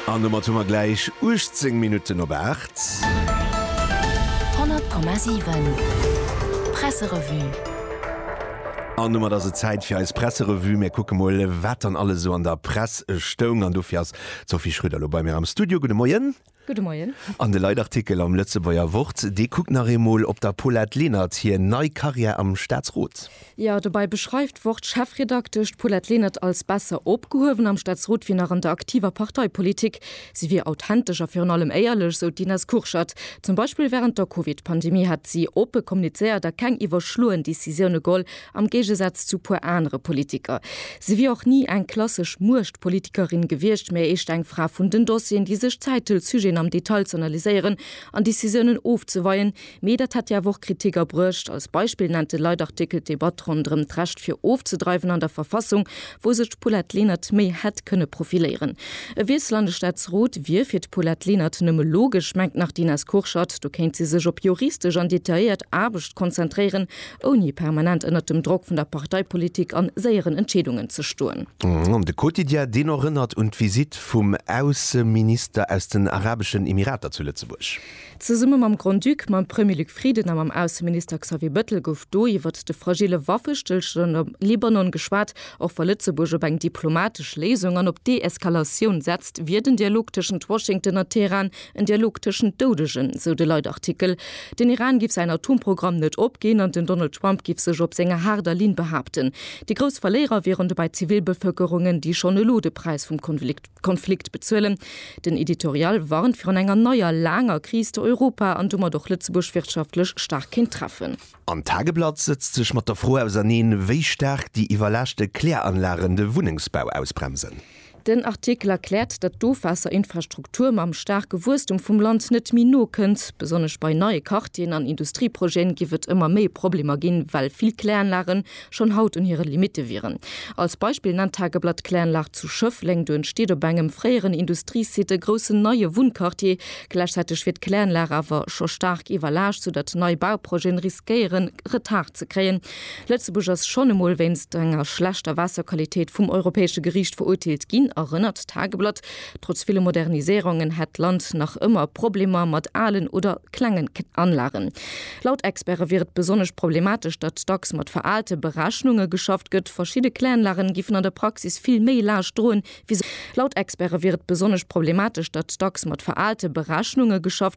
An domat hu mer gläich 18 Minutten op 8. 100,7 Presserevue. An domat ass et Zäit fir eis Presserevue. Mir kucke mol, wat dann alles esou an der Press stoung. An dofir ass d'Sophie Schröder elo bei mir am Studio. Gudde Moien. Gudde Moien. An de Leitartikel am Lëtzebuerger Wort, dee kuckt nach eemol op der Paulette Lenert hir nei Karriär am Staatsrot. Jo, dobäi beschreift d'Wort-Chefredaktesch d'Paulette Lenert als besser opgehuewen am Staatsrot wéi nach an der aktiver Parteipolitik. Si wier authentesch a virun allem éierlech, sou d'Ines Kurschat. Zum Beispill wärend der Covid-Pandemie hätt si oppe kommunizéiert a keng iwwerschloen Decisioune geholl, Am Géigesaz zu puer anere Politiker. Si wier och ni eng klassesch Muechtpolitikerin gewiescht, mä eescht eng Fra vun den Dossieren, déi sech Zäit hëlt, Sujeten am Detail ze analyséieren an Decisiounen ofzeweien. Mee dat hätt hir awer och Kritik abruecht. Als Beispill nennt de Leitartikel d'Debatt ronderëm d'Recht fir ofzedreiwen an der Verfassung, wou sech d'Paulette Lenert méi hätt kënne profiléieren. E Wiessel an de Staatsrot wier fir d'Paulette Lenert nëmme logesch, mengt nach d'Ines Kurschat. Do kéint si sech op juristesch an detailléiert Aarbecht konzentréieren. ouni permanent ënnert dem Drock vun der Parteipolitik an séieren Entscheedungen ze stoen. An de Quotidien, deen erënnert un d'Visitt vum Ausseminister aus den Arabeschen Emirater zu Lëtzebuerg. Zesumme mam Grand-Duc, mam Premier Luc Frieden a mam Ausseminister Xavier Bettel gouf do iwwert de fragille Waffestëllstand am Libanon geschwat. Och wa Lëtzebuerg op eng diplomatesch Léisung an op Deeskalatioun setzt, wier den Dialog tëschent Washington a Teheran En Dialog tëschent Doudegen, esou de Leitartikel. Den Iran giff säin Atomprogramm net opginn an den Donald Trump giff sech op senger haarder Linn behaapten. Déi grouss Verléierer wieren dobäi d'Zivilbevëlkerungen, déi schonn elo de Präis vum Konflikt bezuelen. Den Editorial warnt virun enger neier, laanger Kris, déi Europa an domat och Lëtzebuerg wirtschaftlech staark kéint treffen. An d'Tageblatt sëtzt sech mat der Fro auserneen, wéi staark déi iwwerlaaschte Kläranlagen de Wunnengsbau ausbremsen. Den Artikel erkläert, datt d'Ofwaasserinfrastruktur mam staarke Wuesstum vum Land net méi nokënnt. Besonnesch bei neie Quartieren an Industrieprojeten giff et ëmmer méi Problemer ginn, well vill Kläranlagen schonn haut un hire Limitte wieren. Als Beispill nennt d'Tageblatt d'Kläranlag zu Schëffleng. Do entsteet op engem fréieren Industriesite e groussen neie Wunnquartier. Gläichzäiteg wier d'Kläranlag awer scho staark iwwerlaascht, soudatt nei Bauprojeten riskéieren, Retard ze kréien. Lëtzebuerg ass schonn emol wéinst enger schlechter Waasserqualitéit vum Europäesche Geriicht verurteelt ginn, erënnert d'Tageblatt. Trotz ville Moderniséierungen hätt d'Land nach ëmmer Problemer mat alen oder klengen Anlagen. Laut Experte wier et besonnesch problematesch, datt dacks mat veraalte Berechnunge geschafft gëtt. Verschidde Kläranlagen giffen an der Praxis vill méi Laascht droen, wéi se. Laut Experte wier et besonnesch problematesch, datt dacks mat veraalte Berechnunge geschafft.